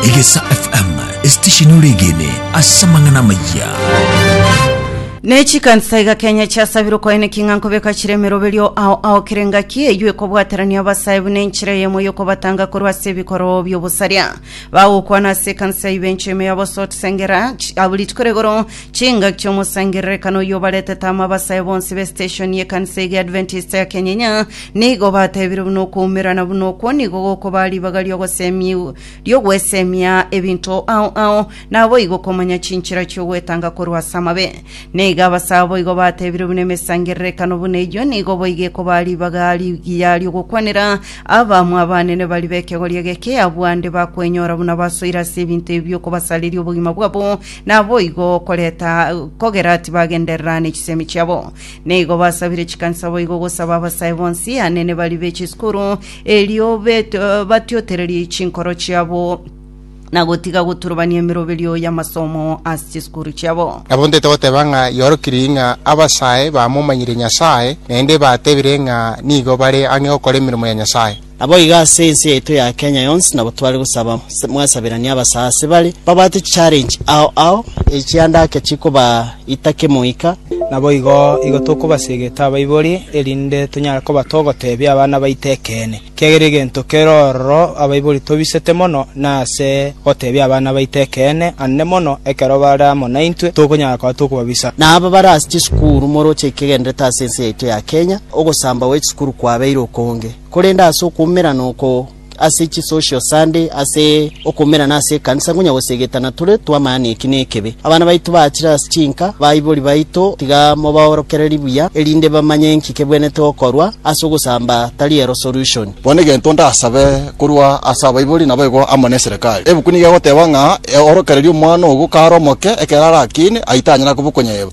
Egesa FM, esitesheni oregene ase amang'ana amayia. Ne chikansa iga Kenya chiasabire okoene king'a nkobeka chire emeroberio ao ao kere ngaki eywo ekobwaterania abasae buna enchera eyemo yokobatanga korwa ase ebikoro biobosaria bagokwana ase ekansa ibencho ime ya Bosot Sengera abuli rituko rigoro Chingaki chi'omosangererekano oyio obaretete amo abasae bonsi b'esiteshoni y'ekanisa eye Adventista ya Kenyenya, nigo batebire buna okoumerana buna okwo nigo gokobaa ribaga ri'ogosemia ri'ogwesemia ebinto ao ao, naboigo komanya chinchera chi'ogwetanga korwa ase amabe. Nigo abasae boigo batebire buna emesangererekano buna eyio nigo boigo ekobaa ribaga rigiya ri'ogokwanera abamwa abanene baria b'ekegori egeke abwo ande bakwenyora buna basoire ase ebinto ebi bi'okobasareria obogima bwabo Naboigo okoreta kogera tibagenderera nechisemi chiabo. Neigo basabire chikanisa boigo gosaba abasae bonsi anene baria be chisukuru erio bet- batiotererie chinkoro chiabo na gotiga goturubania emeroberio y'amasomo ase chisukuru chiabo. Nabo ntaete goteba ng'a iorokirie ng'a abasae bamomanyire Nyasae, naende batebire ng'a nigo bare ang'e gokora emeremo ya Nyasae. Naboigo ase ense yaito ya Kenya yonsi nabo tware gosaba mwasaberanie abasaase bare babwate chichallenge ao ao echiandake chikobaita kemoika, naboigo igo tokobasegeta abaibori erinde tonyare koba togotebia abana baito ekeene, kiagera egento kere ororo abaibori tobisete mono nase gotebia abana baito ekeene, ande mono ekero bare amo naintwe tokonyara koba tokobabisa. Na aba bare ase chisukuru moroche ekegenderete ase ense yaito ya Kenya, ogosamba gwe chisukuru kwabeire okonge. Korende ase okoumerana oko ase chisocial Sunday, ase okoumerana ase ekanisa ngonya gose egetana tore twamanya neki nekebe. Abana baito baachire ase chinka, baibori baito tiga mobaorokererie buya, erinde bamanye nki kebwenete gokorwa, ase ogosamba tari ero solution. Bono egento ndasabe korwa ase abaibori nabo igo amo neserekari. Ebuku nigo egoteba ng'a eorokererie omwana ogo kare omoke ekero arakiine, aye tanyara kobokonya eba.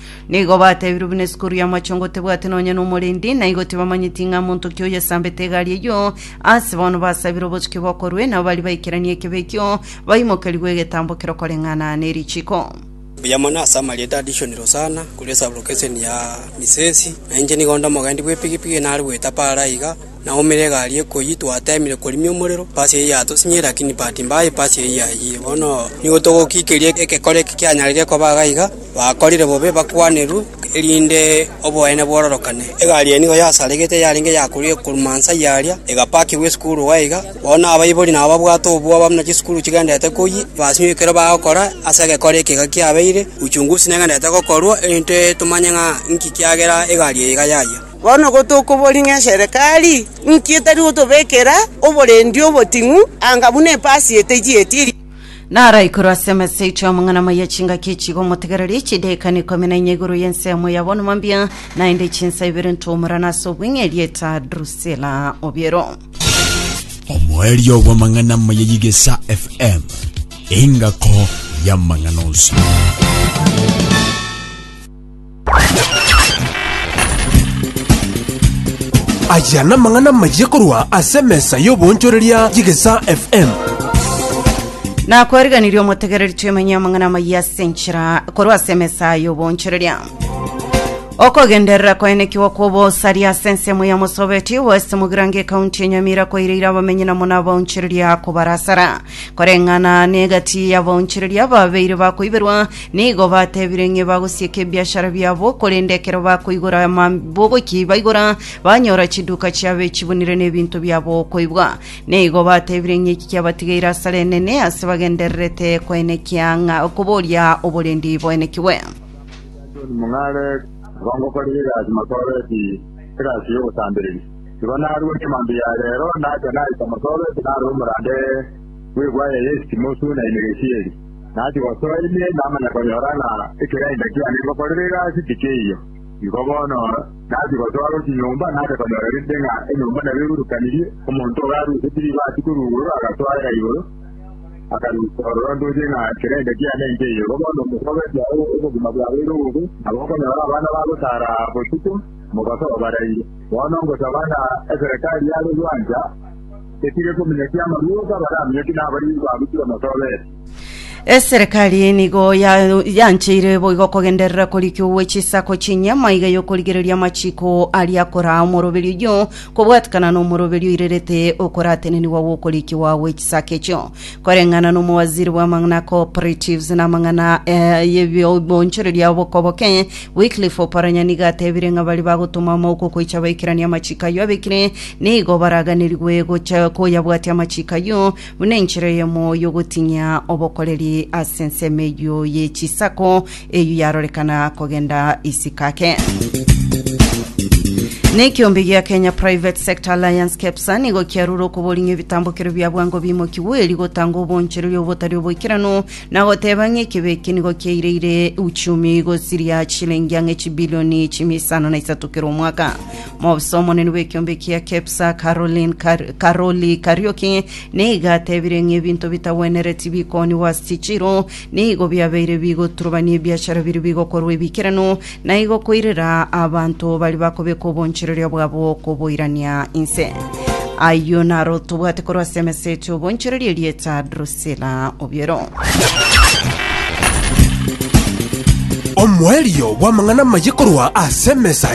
Nigo bateebirwe buna esukuru y'amachongo tebwate nonya n'omorendi, na igo tibamanyeti ng'a monto ki oyesambete egari eyio. Ase bono basabire obotuki bokorwe, nabo baria baikeranie ekebe ekio baimokerigwe egetambo kerokoreng'ana ne richiko. Buya mono ase amarieta a dishoni Rosanna, korwa esablokeseni ya Misesi, na inche nigo onde omogendi bw'epigipigi nare goetapa are aiga, Naumire egari ekoyia twateemire korimia omorero pasi eye yatosinyiire lakini bahati mbaya epasi eye yayiyire bono nigo togokiikeria egekore eke kianyareire koba iga iga bakorire bobe bakwanerwe erinde oboene bwororokane egari eye nigo yasaregete yarenge yakorire korwa mansa aya aria egapakigwa esukuru iga iga bono abaibori nabo babwate obwoba buna chisukuru chigendererete koyia basinyiwe ekero bagokora ase egekore eke iga kiabeire uchunguzi negendererete gokorwa erinde tomanye ng'a inki kiagera egari eye iga yayia. Bono gotokobori ng'a eserekari inki etari gotobekera oborendi oboting'u anga buna epasi etejieti eria? Naraikorwe ase emesechio amang'ana amaya chingaki echigo omotegereri chidaekano ikomi na inya igoro y'ensemo ya bono mambia, naende chinsa ibere ntomorana ase obweng'e erieta Drusila Obiero. Omoerio bw'amang'ana amaya y'Igesa FM, engako y'amang'ana onsi. Aya namang'ana amayia korwa ase emesa y'oboonchoreria y'Egesaa FM. nakwariganirie omotegereri twemenye amang'ana amayia ase enchera korwa ase emesa y'oboonchoreria okogenderera koenekiwa kw'obosaria ase ensemo ya mosobeti west mogirango ekaunti ya nyamira koireire abamenyi namo nabaonchoreria kobarasara koreng'ana negati y'abaonchoreria babeire bakoiberwa Nigo batebire ng'a bagosieka ebiashara biabo, korende ekero bakoigora amabogoki baigora, banyora chiduka chiabo echibunire nebinto biabo okoibwa. Nigo batebire ng'a eki kiabatigeire asare enene, ase bagendererete koenekia ng'a okoboria oborendi boenekigwe. John Mung'are, Nabo ngokorera egasi mosoreti, egasi y'obosambereri. Igo narua chimanto ya reero, nacha naita mosoreti narora omorande bw'egwaya y'esitimosu na emegesi eri. Nati gosoa ime namanya konyora ng'a ekeyainda kiane ngokorera egasi tikeiyo. Igo bono nati gosoa gochia nyomba nache konyora rende ng'a enyomba nabo eburukanirie, omonto obo arusetie ribaati korwa igoro agasoera igoro, akarusa ororo ntoche ng'a ekeyainda kiane nkeiyo. Igo bono mokobetia obogima bwabeire obobe, nabo okonyora abana bagosara botuko, mobaso obaraire. Bono ngosaba ng'a eserekari yare gwancha. Etire komenya ki amarwota baramenya ki nabariri ba gochika motobeete? Eserekari nigo ya- yancheire boigo kogenderera korikia owe chisako chi'enye maiga y'okorigereria amachiko aria akoraa omoroberio oyio kobwatekana n'omoroberio oirerete okoratenenigwa gw'okorikiwa gwe chisako echio. Koreng'ana n'omowaziri bw'amang'ana aa cooperatives n'amang'ana eh, y'ebi- obonchoreria bokoboke Wycliffe Oparanya nigo atebire ng'a baria bagotoma amauko koicha baikeranie amachiiko ayio abekire, nigo baraaganerigwe gocha koyabwatia amachiiko ayio, buna enchera eyemo y'ogotinyia obokoreri ase ensemo eyio ye chisako, eyio yarorekana kogenda isiko ake. Na ekiombe gia Kenya Private Sector Alliance KEPSA nigo kiarure okoboria ng'a ebitambokero bia bwango bimokigwe erio gotanga obonchoreria obotari oboikeranu na goteba ng'a ekebe eke nigo kiaireire uchumi gosiria chilingi ang'e chibilioni chimia isano na isato kera omwaka. Mobisa omonene bw'ekiombe kia KEPSA Caroline Kar Karoli Karioki nigo atebire ng'a ebinto bitagwenereti bikoniwa ase chichiro nigo biabeire bigoturubania ebiachara biria bigokorwa ebikeranu na igo koirera abanto bari bakobeka obonchereria bwabo koboirania inse. Ayio naro tobwate korwa ase emesa eto obonchereria erieta Drus Sila obiero. Omoerio bw'amang'ana amaye korwa ase emesa